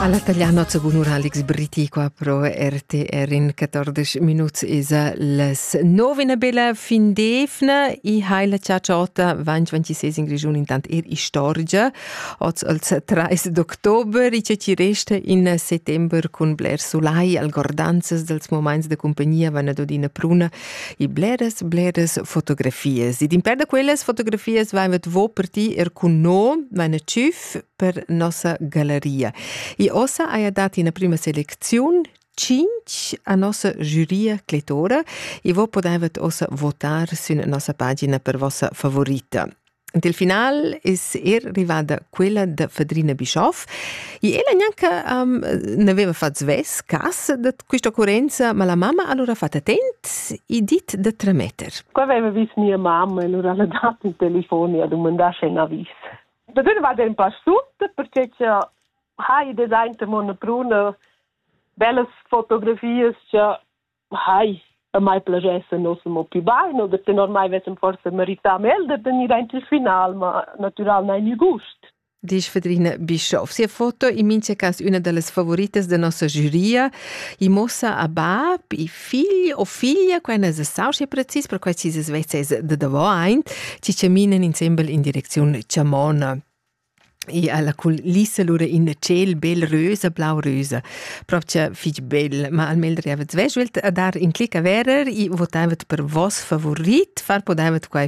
Alla tagliano gunura Alex Britiqua pro RTR in 14 minuts esa las 9 una bella fin d'evna i hai la ciacciotta 2026 in Region intant er istorgia oz als 3 d'october i ci resta in settember cun bler solai al gordanzas dels moments de compagnia van ad odina pruna i bleras bleras fotografias ed in per da quellas fotografias vaivat vo per ti er cun no van a tschüf per nossa galleria. E ossa haja dat ina prima selecziun cinc a nossa giuria cletora e vo podevet ossa votar sün nossa pagina per vossa favorita. Ed il final es er rivada quella da Fadrina Bischoff e ella gnanca um, n'aveva fatto svess cas da questa occorrenza, ma la mamma allora ha fatto attent e dit da trametter. Qua aveva vis mia mamma e allora l'ha dato un telefono e ha domandato se n'ha vis. da gun va den passu perché che ha i design de mona bruna bellas fotografias che hai a mai piacesse non mo più baino perché ormai vessem forse merità mel de tenir aint il final ma natural nein il gust Dici Fedrina Bischoff. Sia foto in mincha cas una da las favoritas da nossa giuria e mossa a bab e figl o figlia, quai na es stau schi precis, perquai chi s'es vezzes da davo aint, chi chaminan insembel in direcziun chamona. E alla culissa lura in tschel bel rösa, blau rösa. Propcha fich bel, ma almel riavet sveschelt a dar in clic a verer e votavet per vos favorit, far podaivet quai